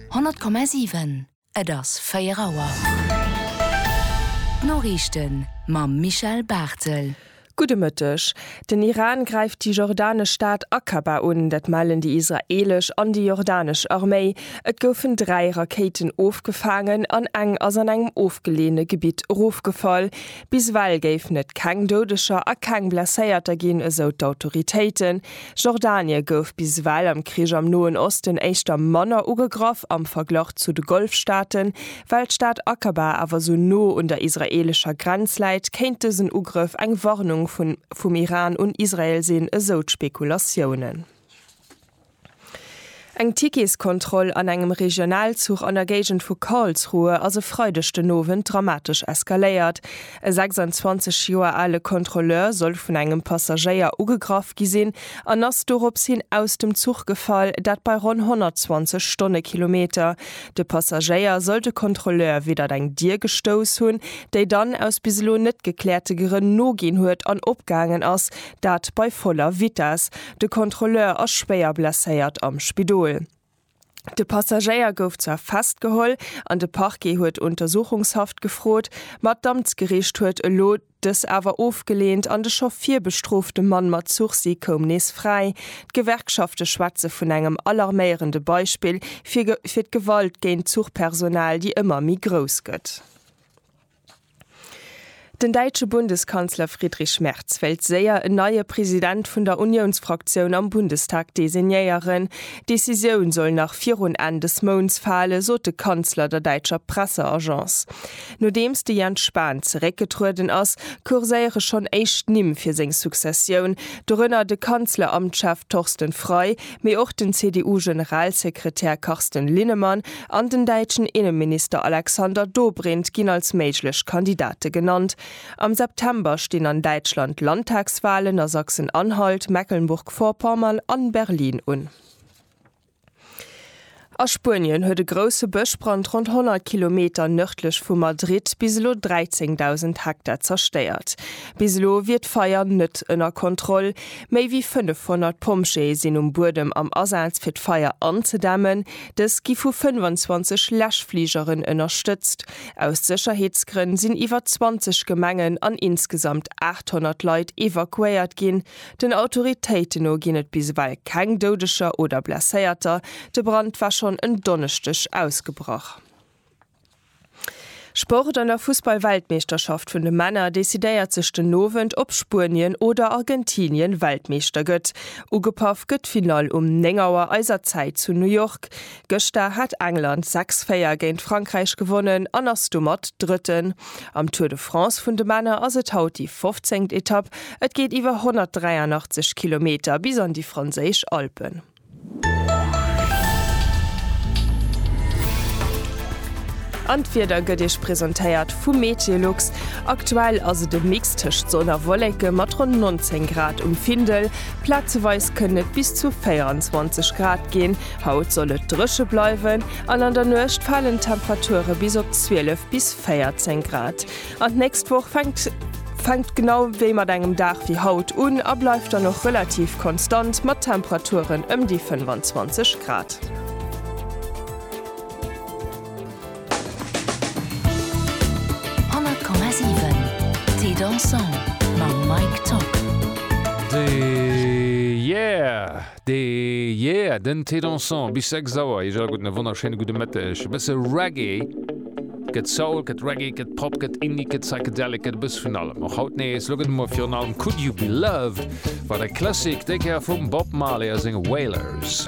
100,7 Et ass 4 Auer. D'Noriichten mam Michel Barthel. Gudde Mëtteg. Den Iran gräift déi jordanesch Stad Aqaba un. Dat mellen déi israeelesch an déi jordanesch Arméi. Et goufen dräi Rakéiten ofgefaangen an eng ass an engem ofgeleeëne Gebitt erofgefall. Bis ewell géifen et keng Doudeger a keng Blesséierter ginn, esou d'Autoritéiten. Jordanie gouf bis ewell am Krich am Noen Osten éischter manner ugegraff am Verglach zu de Golfstaaten. Well d'Stad Aqaba awer sou no un der israeelescher Grenz läit, kéint dësen Ugrëff eng Warnung vum Iran un Israel sinn, esou d'Spekulatiounen. Eng Ticketskontroll an engem Regionalzuch an der Géigend vu Karlsruhe ass e Freideg den Owend dramatesch eskaléiert. E 26 Joer ale Kontrolleur soll vun engem Passagéier ugegraff gi sinn an ass dorops hin aus dem Zuch gefall, dat bei ronn 120 Stonnekilometer. De Passagéier soll de Kontrolleur widdert eng Dier gestouss hunn, déi dann aus bis elo net gekläerte Grënn noginn huet an opgaangen ass, dat bei voller Vitess. De Kontrolleur ass schwéier blesséiert am Spidol. De Passagéier gouf zwar festgeholl an de Parquet huet Untersuchungshaft gefrot, ma d'Amtsgeriicht huet elo dës awer ofgeleent an de scho virbestrofte Mann mat Sursis koum nees fräi. D'Gewerkschafte schwätze vun engem alarméierende Beispill fir d'Gewalt géint d'Zuchpersonal, déi ëmmer méi grouss gëtt. Den däitsche Bundeskanzler Friedrich Merz wéilt séier en neie President vun der Uniounsfraktioun am Bundestag designéieren. D'Decisioun soll nach virun Enn des Mounts fale, sot de Kanzler der däitscher Presseagence. Nodeems de Jens Spahn zeréckgetrueden ass, kurséiere schonn éischt Nimm fir seng Successioun, dorënner de Kanzleramtschef Thorsten Frei, Mee och den CDU-Generalsekretär Carsten Linnemann an den däitschen Inneminister Alexander Dobrindt ginn als méiglech Kandidate genannt. Am September stinn an Däitschland Landtagswalen a Sachsen-Anhalt, Mecklenburg-Vorpommern an Berlin un. A Spuenien huet e grousse Bëschbrand ronn 100 Kilometer nërdlech vu Madrid bis elo 13.000 Hektar zerstéiert. Bis elo wier d'Feier net ënner Kontroll. Méi wéi 500 Pompjeeë sinn um Buedem am Asaz fir d'Feier anzedämmen. Dës gi vu 25 Läschfligeren ënnerstëtzt. Aus Sécherheetsgrënn sinn iwwer 20 Gemengen an insgesamt 800 Leit evakuéiert ginn. Den Autoritéiten no ginn et bis ewell keng Doudeger oder Blesséierter. De Brand war schonn en Donneschdeg ausgebrach. Sport, An der Fussball-Weltmeeschterschaft vun de Männer decidéiert sech den Owend, ob Spuenien oder Argentinien Weltmeeschter gëtt. Ugepaff gëtt d'Finall um 9 Auer eiser Zäit zu New York. Gëschter hat England 6, 4 géint Frankräich gewonnen an ass domat Drëtten. Am Tour de France vun de Männer ass et haut déi 15. Etapp. Et geet iwwer 183 Kilometer bis an déi franséisch Alpen. An d'Wieder gëtt Iech presentéiert vu Meteolux. Aktuell ass et e Mix tëscht Sonn a Wolleke mat ronn 19 Grad um Findel. Plazeweis kënnen et bis zu 24 Grad ginn. Haut soll et dréche bleiwen an an der Nuecht falen d'Temperature bis op 12 bis 14 Grad. An d'nächst Woch fänkt fänkt genau wéi mat engem Dag wéi haut un a bleift dann och relativ konstant mat Temperaturen ëm déi 25 Grad. De Yeah, den Ted Danson bis 6 Auer. Iech all gudden a wonnerschéine gudde Mëtteg. E bësse Reggae, gëtt Soul, gëtt Reggae, gëtt Pop, gëtt Indie, gëtt Psychedelic, gëtt e bësse vun allem och haut nees. Lo gëtt et emol virun allem Could You Be Loved, wat e Classic, déi Kéier vum Bob Marley a senge Wailers.